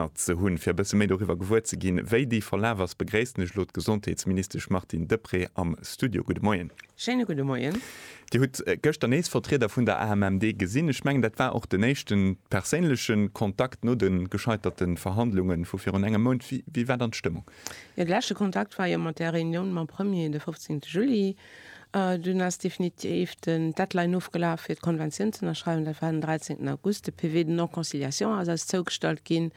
Partner ze hunn. Fir e bësse méi doriwwer gewuer ze ginn, wéi déi verlaf ass, begréissen ech elo d'Gesondheetsministesch Martine Deprez am Studio. Gudde Moien. Schéine gudde Moien. Dir hutt gëschter nees Vertrieder vun der AMMD gesinn. Ech mengen, dat war och den éischte perséinleche Kontakt no de gescheiterte Verhandlunge vu virun engem Mount. Wéi war dann d'Stëmmung? Jo, de leschte Kontakt war jo mat där Reunioun mam Premier de 15 Juli. Dunn ass definitiv den Deadline ofgelaf fir d'Konventioun ze ënnerschreiwen, dat war den 13 August. De PV de non-conciliation ass eis zougestallt ginn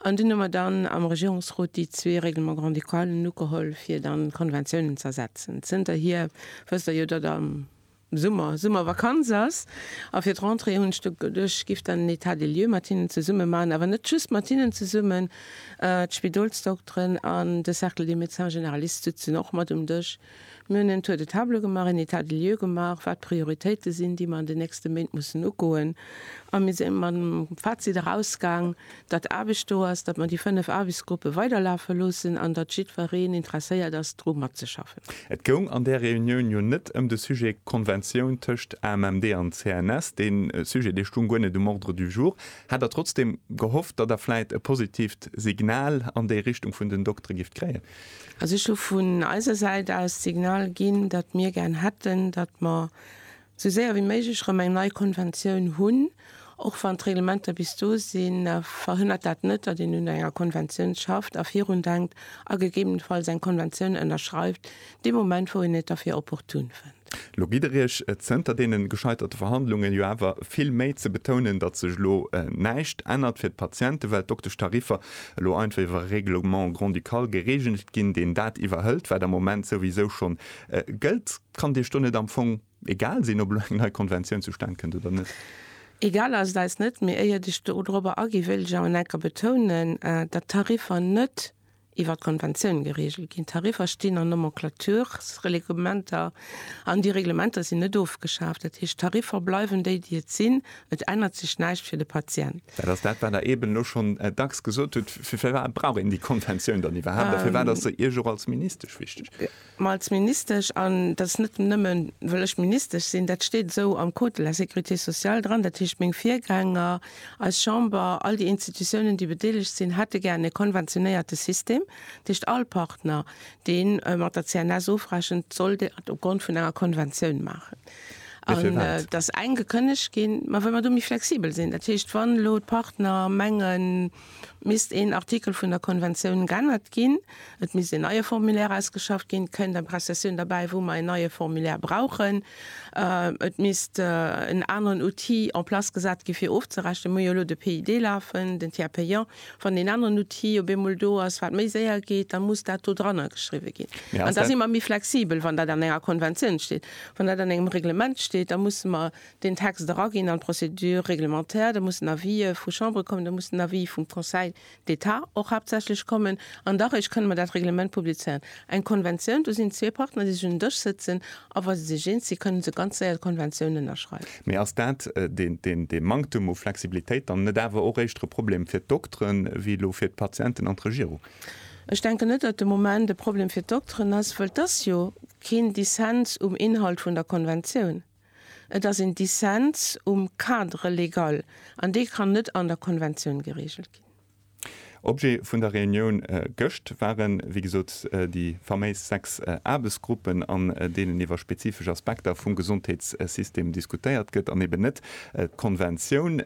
an dunn hu mer dann am Regierungsrot déi zwee Règlements grand-ducalen ugeholl, fir dann d'Konventioun ëmzersetzen. Zënterhier wësst Der jo, datt am Summer Summervakanz ass a fir d'Rentrée hunn ech geduecht, ech giff dann en État des lieux mat hinnen zesumme maachen, awer net just mat hinnen zesummen, d'Spidolsdokteren an de Cercle des médecins généralistes sitzen och mat um Dësch, Mir hunn en Tour de table gemaach, en Etat des lieux gemaach, wat d'Prioritéite sinn, déi mer an den nächste Méint mussen ugoen. A mir si mat dem Fazit erausgaang, datt Aarbecht do ass, datt mer déi fënnef Aarbechtsgruppe weiderlafe loossen an datt jiddwereen interesséiert ass, dru matzeschaffen. Et goung an där Reunioun jo net ëm de Sujet Konventioun tëscht AMMD an CNS. Dee Sujet, dee stoung guer net um Ordre du jour. Hat Der trotzdeem gehofft, datt Der vläit e positiivt Signal an déi Richtung vun den Doktere gift kréien? Also ech hu vun eiser Säit aus d'Signal ginn, datt mir gären hätten, datt mer esou séier wéi méiglech erëm eng nei Konventioun hunn. Och wann d'Reglementer bis do sinn, verhënnert dat net, datt een un enger Konventioun schafft a virun denkt a gegebenenfalls eng Konventioun ënnerschreift, dee Moment wou een et derfir opportun fënnt. Lo gitt Der Iech zënter deene gescheiterte Verhandlunge jo awer vill Méi ze betounen, datt sech elo näischt ännert fir d'Patienten, well d'Dokteschtariffer elo einfach iwwer e Règlement grand-ducal geregelt ginn, deen dat iwwerhëlt, wat am Moment souwisou schonn gëllt. Kann Dir Iech do net am Fong egal sinn, ob elo eng nei Konventioun zustan kënnt oder net? Egal ass et eis net, mee éiert ech dorobber aginn, wéilt ech awer nach eng Kéier betounen, datt d'Tariffer net, iwwert d'Konventioun gereegelt ginn. D'Tariffer stinn an Nomenclatursreglementer an déi Reglementer sinn net ofgeschaaft. Dat heescht, d'Tariffer bleiwen déi, déi et sinn. Et ännert sech näischt fir de Patient. Dat ass dat, wat Der eeben elo schonn dacks gesot hutt. Firwat brauch een déi Konventioun dann iwwerhaapt a firwat ass se Iech och als Ministesch wichteg? Mä als Ministesch, an dat ass net nëmme well ech Ministesch sinn, dat steet esou am Code de la sécurité sociale dran, dat heescht meng Virgänger, eis Chamber, all déi Institutiounen déi bedeelegt sinn, hätte gär e konventionéierte System, dat heescht all Partner dee mat der CNS ofrechent, soll dat op Grond vun enger Konventioun maachen. An et ass eng gekënnegt ginn. Mä well mer do méi flexibel sinn, dat heescht wann elo d'Partner mengen, Misst een Artikel vun der Konventioun g'ännert ginn, et misst een neie Formulaire ausgeschafft ginn, kënnt eng Prestation derbäi, wou mer een neie Formulaire brauchen, et misst en aneren Outil en place gesat gi fir ofzerechnen. Mir hu jo elo de PID lafen, den Tiers payant. Wann deen aneren Outil op eemol do ass, wat méi séier geet, da muss dat do drannergeschriwwen ginn. An da si mer méi flexibel, wann dat an enger Konventioun steet. Wann dat an engem Reglement steet, da musse mer den Text eraginn an d'Procédure réglementaire, da mussen Avisë vu Chambere kommen, da muss den Avis vum Conseil d'État och haaptsächlech kommen an da réischt kënne mer dat Reglement publizéieren. Eng Konventioun, do sinn zwee Partner, déi sech un den Dësch sëtzen a wa se sech eens sinn, kënne se ganz séier d'Konventioun ënnerschreiwen. Mee ass dat, dee Manktum u Flexibilitéit, dann net awer och éischter e Problem fir d'Dokteren wéi elo fir d'Patienten an d'Regierung? Ech denken net, datt de Moment e Problem fir d'Dokteren ass, wëll et ass jo keen Dissens um Inhalt vun der Konventioun. Et ass een Dissens um Cadre légal, an dee kann net an der Konventioun geregelt ginn. Objet vun der Reunioun gëscht waren, wéi gesot, déi faméis sechs Aarbechtsgruppen, an deenen iwwer spezifesch Aspekter vum Gesondheetssystem diskutéiert gëtt, an eben net d'Konventioun.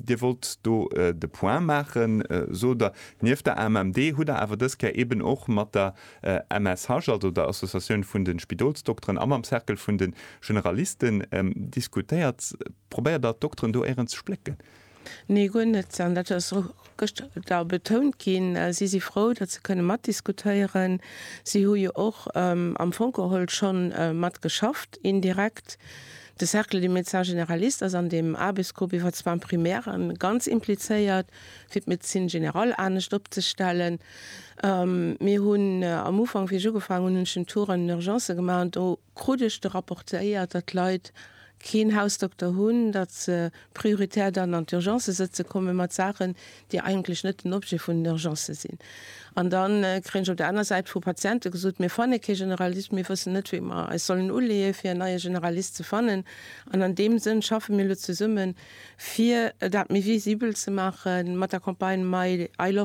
Dir wollt do de Point maachen, sot Der. Nieft der AMMD hutt Der awer dës Kéier eben och mat der MSH, also der Associatioun vun de Spidolsdokteren, a mam Cercle vun de Generalisten diskutéiert. Probéiert Der d'Dokteren do éirens ze splécken? Nee, guer net. An dat ass och gëschter da betount ginn. Si si frou, datt se kënne matdiskutéieren. Si hu jo och am Fong geholl scho mat geschafft, indirekt. De Cercle des médecins généralistes ass an deem Aarbechtsgrupp iwwer d'Soins primaires ganz implizéiert. fir d'Médecine générale anescht opzestellen. Mir hunn am Ufank, wéi ech ugefaangen hunn, hunn ech den Tour an den Urgencë gemaach an do krut ech de rapportéiert, datt d'Leit keen Hausdokter hunn, datt se prioritär dann an d'Urgencë sëtze komme mat Saachen, déi eigentlech net den Objet vun den Urgencë sinn. An da kréien ech op der aner Säit vu Patiente gesot, Mir fanne kee Generalist, mir wëssen net, wéi mer eis sollen uleeë fir en neie Generalist ze fannen. An an deem Sënn schaffe mir elo zesummen. Fir dat méi visibel ze maachen, mat der Campagne My I Love.